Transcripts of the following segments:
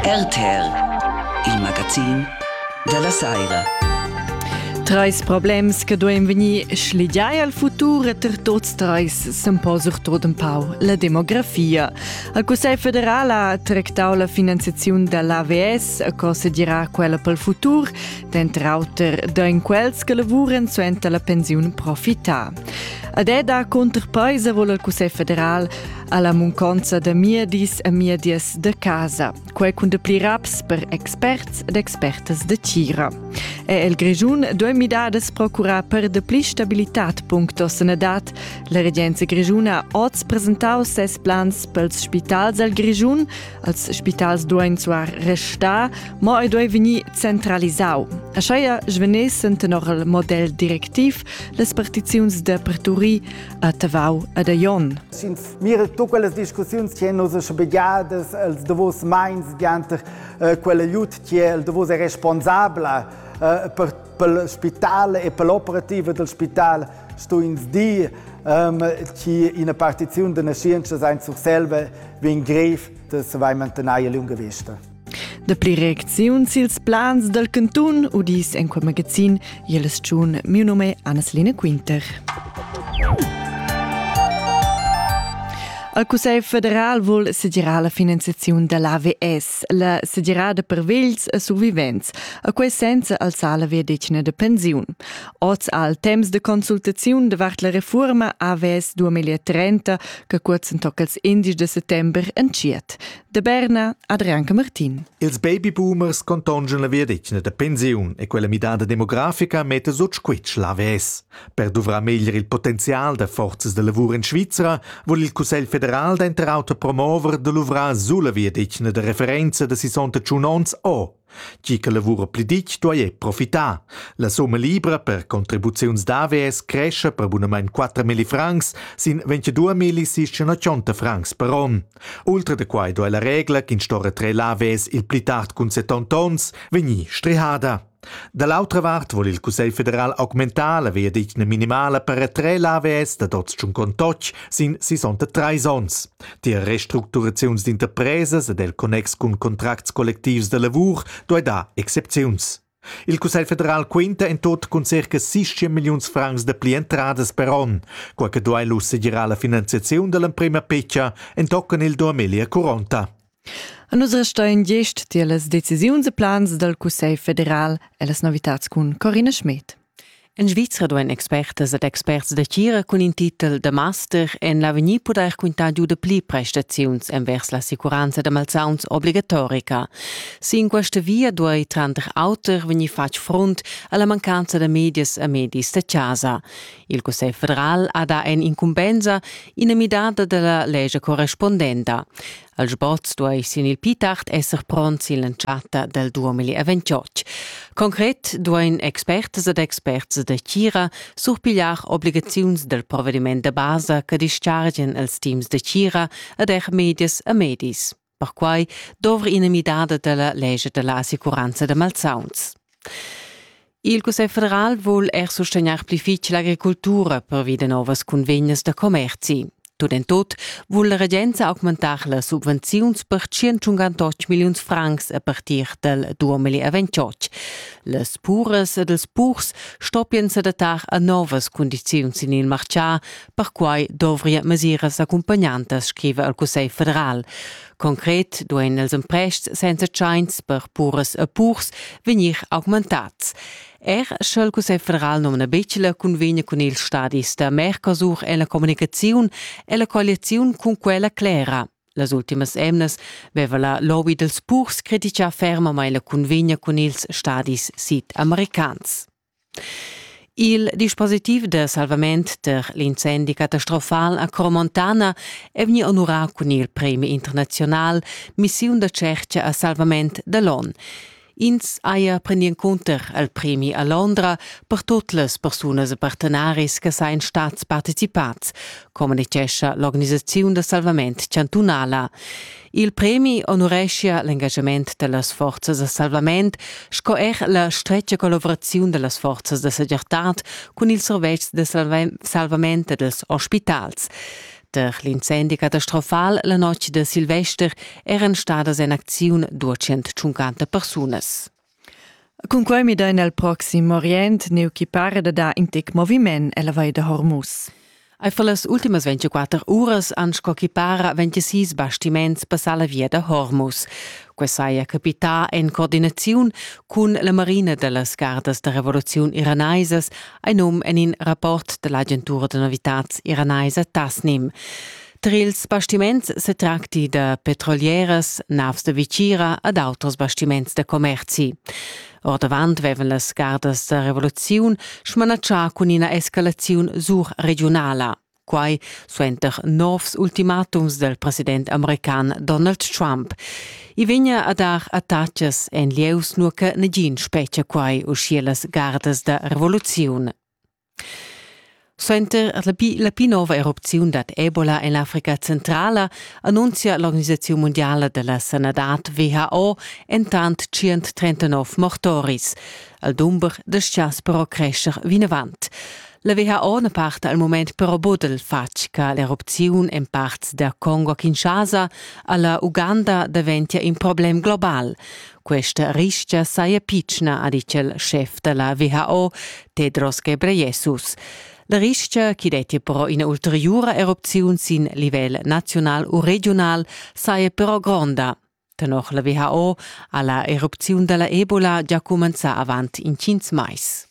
RTR, il magazin dalla saira. Treis problems che duein vegnir schligiai al futur e ter tots treis s'empau surtot un pau la demografia. Il Cussegl federal ha tractau la finanziaziun dall'AVS a co segira quella pel futur, dentr auter da in quels che lavuren suenter la pensiun profità. Ad eda conterpaisa vol il Cussegl federal alla munconza da miedis e miedias de casa, quei cun de pli raps per experts ed expertas de tgira. E el Grigiun due midades procura per de pli stabilitat punctos en edat. La regenza grigiuna oz presentau ses plans pels spitals al Grigiun, als spitals duein zuar restar, mo ei due veni centralisau. A scheia svenesen tenor il model directiv les partiziuns de Perturi a Tavau ed a Jon. Mira tu quelles discussiuns che nos sbegiadas els davos meins gianter eh, quell'aiut che el davos è responsabla eh, per pel spital e per l'operativa del spital sto ins dir um, che una partizione della scienza in Surselva vien grev, dass vai mantenaia lunga vista. Dapli reacziuns ils plans dal cantun udis en quel magazin Jeles Tschun, mio nome Annaslene Quinter. Al Cussegl federal vuol segirar la finanziaziun dall'AVS, la sedirada per vegls e survivents, a quei senza alzar la verdetgna de pensiun. Oz al temps de consultaziun davart la reforma AVS 2030, che kurzen toccals indisch de settember entschiet, De Berna Adrian Martin. Ils babyboomers contongian la viadetgna da pensiun e quella midada demografica metta sut squitsch l'AVS. Per duvrar meglier il potenzial da forzas da lavur in Svizra vuol il Cussegl federal denter auter promover da luvrar sulla viadetgna da referenza da 68 onns o Tgi che lavura pli ditg duai profitar. La summa libra per contribuziuns d'AVS cresce per bunamain 4.000 francs sin 22.680 francs per onn. Ultra da quai duai la regla ch'in sto retrair l'AVS il pli tard cun 70 onns vegnir strihada. Da l'autra vart vul il Cussegl federal augmentar la veadetgna minimala per retrair l'AVS dad oz tschun contotg sin 63 onns. Tier restructuraziuns d'interpresas ed el connex cun contracts collectivs da lavur duei dar excepziuns. Il Cussegl federal quinta en tot cun circa 60 milliuns francs dapli entradas per onn, quei che duei lu segirar la finanziaziun dall'emprema picca entochen il 2040. A nus restein gest tier las decisiuns e plans dal Cussegl federal e las novitads cun Corina Schmidt. En Svizra duain expertas ed experts da tgira cun in titel da master en l'avegnir pudair quintar giu da pli prestaziuns envers l'assicuranza da malsauns obligatorica. Sin questa via duai tranter auter vegnir fatg frunt alla mancanza da medias e medis da chasa. Il Cussegl federal ha dà en incumbensa ina midada della legge correspondenta. Al sport stuai sin il pi tard esser pront sin l'entschatta dal 2028. Concret duain expertas ed experts da Tgira surpigliar obligaziuns dal provediment da basa che dischargian els teams da Tgira ed er medias e medis. Perquai dovri ina midada da la legge da la assicuranza da malsauns. Il Cussegl federal vul er sustegnar pli fitg l'agricultura pervi da novas cunvegnas da commerzi. Tut en tut vul la regenza augmentar las subvenziuns per 158 milliuns francs a partir dal 2028. Las puras ed els purs stoppian s'adattar a novas cundiziuns sin il martgà, perquai dovria mesiras accompagnantas, scriva il Cussegl federal. Concret duein els emprests senza tschains per puras e purs vegnir augmentats. Er sch'el Cussegl federal nomna Becela cunvegna cun ils stadis da Mercosur e la communicaziun e la colliaziun cun quella clera. Las ultimas emnas veva la lobby dels purs critica fermamain la cunvegna cun ils stadis sid-americans. Il dispositiv da salvament per l'incendi catastrofal a Cromontana è vegni onurà cun il premi internaziunal Missiun da tscherca a salvament da l'on. Ins haja prendi encunter al premi a Londra per tut las persunas e partenaris che sain stats participads, communicescha l'organisaziun da salvament chantunala. Il premi honureschia l'engagement dellas forzas da salvament sco er la stretga collaboraziun dellas forzas da segirtad cun ils servetschs de salvament e dels ospitals. Der l'incendi catastrofal la notg de Silvester eran stadas en acziun 250 persunas. Cunquei midein el proxim Orient neu chi para da dar in tec moviment ella Vall da Hormuz. Ei fa las ultimas 24 uras an sco chi para 26 bastiments passar la via da Hormuz. Quei saja capità en coordinaziun cun la Marina dallas gardas da revoluziun iraneisas, ein num en in rapport dall'agentura da novitats iranaisa Tasnim. Tra ils bastiments se tracti da petrolieras, navs de vicira ed auters bastiments da commerzi. Ordavant vevan las gardas da revoluziun smanatschà cun ina escalaziun surregiunala. Quai suenter novs ultimatums del president american Donald Trump. I vegna a dar attacas en lieus nur che negin spetgia quai uschia las gardas da revoluziun. Suenter la pi, la pli nova erupziun dad Ebola en l'Africa centrala annunzia l'organisaziun mundiala da la sanadad WHO entant 139 mortoris. Al dumber dastgias però crescher vinavant. La WHO na parta al mument però bodel fatg che l'erupziun en parts da Congo a Kinshasa a la Uganda daventia in problem global. Questa ristga saja pitschna, ha ditg il schef da la WHO, Tedros Ghebreyesus. La ristga, chi dettia però ina ulteriura erupziun sin livel naziunal u regiunal, saja però gronda. Tenor la WHO ha la erupziun da la Ebola già cumenzà avant intgins mais.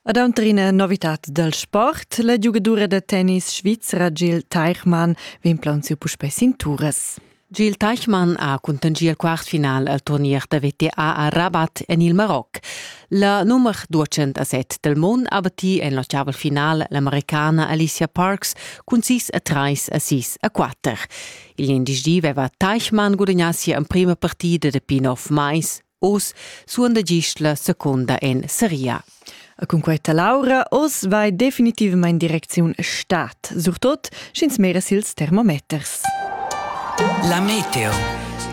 Ad Antrina novitat dal sport, la giugadura da tennis svizra Gil Teichmann vegn plaunsiu puspei sin turas. Gil Teichmann ha cuntangiu il quartfinal al turnier da VTA a Rabat en il Maroc. La nummer 207 del mond ha batti en l'ottaval final l'americana Alicia Parks cun 6 a 3 a 6 a 4. Il indici veva Teichmann gudagnà sia emprima partida da pin-off mais Oz suonda gist la seconda en seria. E cun questa Laura oz vai definitivamain direcziun stat, surtot sch'ins mera sils termometers. La meteo.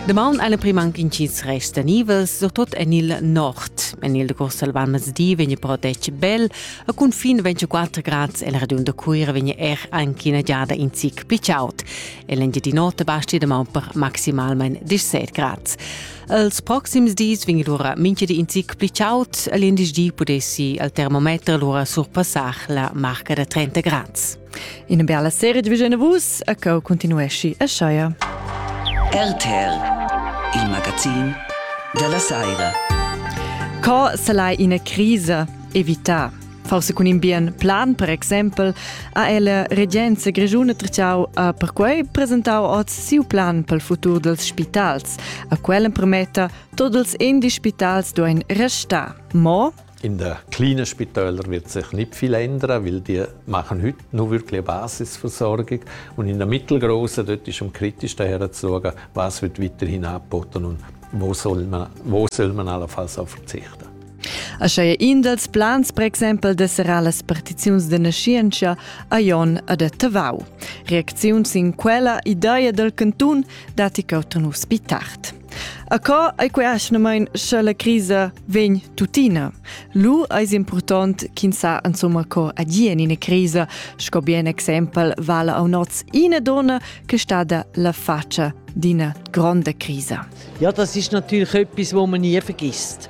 Damaun alle primankin chits resta nivels, surtot en il nord. En il decurs al venerdì vegn però detg bel, a confin 24 grad e la regiun da Cuira vegn er anche una giada in zic più chaud. E l'engiadinota basti damaun per maximalmente 17 grad. Els proxims dis vegn lura mintgadi in zic pli chaud e l'indici pudessi al termometer lura surpassar la marca da 30 grads. Ina bella serie di Vision Vus e che continuesci a Scheier. RTL, il magazin della Saira. Co se l'hai ina crisa evità? Forse cun in bien plan, per exempel, ha ella regenza grischuna Trachau ha perquei presentau oz siu plan pel futur dels spitals. A quel emprometta tots els indi spitals duein restar. Mo in der kleinen Spitäler wird sich nicht viel ändern, weil die machen heute nur wirklich Basisversorgung. Und in der mittelgroßen, dort ist am kritischsten herzuschauen, was wird weiterhin angeboten und wo soll man, wo soll man allenfalls auf verzichten. Aschia è in dals plans per exempel de serrar las partiziuns de naschientscha a Jon ad a Tavau. Reacziun sin quella ideia del cantun dati cautanus pi tard. A co ei queaschnamein sche la crisa vegn tuttina? Lu eis important ch'ins sa insomma co agien in crisa, sco bien exempel vala a noz ina donna che stada la faccia d'ina gronda crisa. Ja, das ist natürlich etwas, was man nie vergisst.